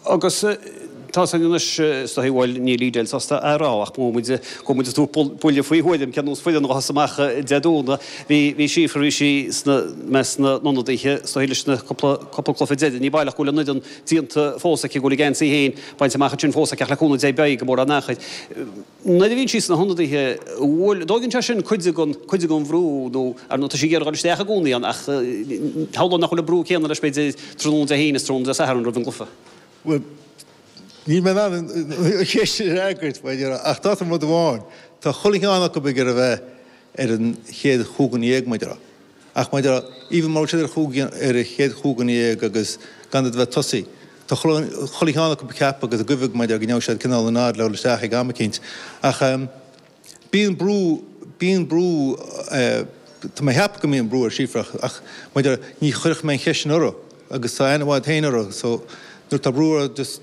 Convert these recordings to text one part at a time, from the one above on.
Agus tá san anois is dóigh, bhuel, níl Edel sásta a rá ach mhol muid, thug muid tabhairt buille faoi thuairim cén nós fuil an ghuthasa amach Dé Domhnaigh. Bhí, bhí Síofra, bhí sí sna, i measc na n-ionadaithe is dóigh leis na cúpla, cúpla cluiche deiridh, ní baileach go bhfuil an fhoireann díonta fós aici, go bhfuil a geansaí féin bainte amach ansin fós aici ach le cúnamh Dé beidh gan mórán achair. nuair a bhíonn sí sna hionadaithe, bhuel, tógann sé sin cuid den, cuid den bhrú nó, ar ndóigh, tá sí ag iarraidh dul isteach i gcónaí ann ach shamhlóinn nach bhfuil an brú céanna leis, b'fhéidir, tráthnóna Dé hAoine is tráthnóna Dé Satharn roimh an gcluiche. Bhuel, níl mé in ann an cheist sin a fhreagairt mar a déarfá ach d'áiteoinn rud amháin, tá chuile cheann acu ag iarraidh a bheith ar an chéad chúig dhuine dhéag mar a déarfá. Ach mar a déarfá, even mura bhfuil siad ar chúig, ar a chéad chúig dhuine dhéag agus gan iad a bheith ag tosaí, tá chuile cheann acu ag ceapadh agus ag guibhe mar a déarfá go ngeobhaidh siad cineál an nod le dhul isteach ag am eicínt. Ach bíonn brú, bíonn brú, tá mé a cheapadh go mbíonn brú ar Síofra ach, ach mar a déarfá, ní chuirfeadh mé an cheist sin uirthi agus tá aithne mhaith agam fhéin uirthi so nuair atá brú uirthi just,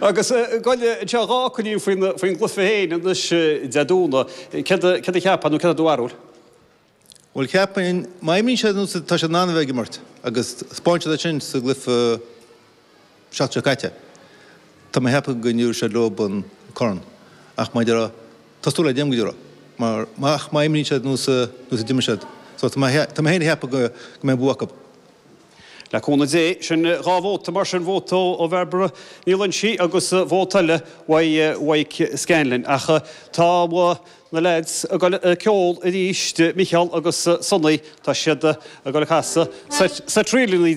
Agus gabh i leith anseo dhá coinníodh faoin gcluife féin anois Dé Domhnaigh, céard a cheapfá nó céard do bharúil? Bhuel, cheapfainn, má imríonn siad nós atá siad in ann a bheith ag imirt agus spáin siad é sin sa gcluife seachtain seo caite, tá mé ag ceapadh go dtabharfaidh siad leo an corn ach mar a déarfá tá súil agam go dtabharfaidh mar ach má imríonn siad nós a d'imir siad so tá mé féin ag ceapadh go mbeidh an bua acu. Le cúnamh Dé, sin dhá vóta mar sin, vóta ó Bhairbre Ní Loingsigh agus vóta eile uaidh Mhaidhc Scanlon. Ach tá na leaids ag dul ag ceol arís, Micheál agus Sonny, tá siad ag dul ag casadh seit ríleannaí.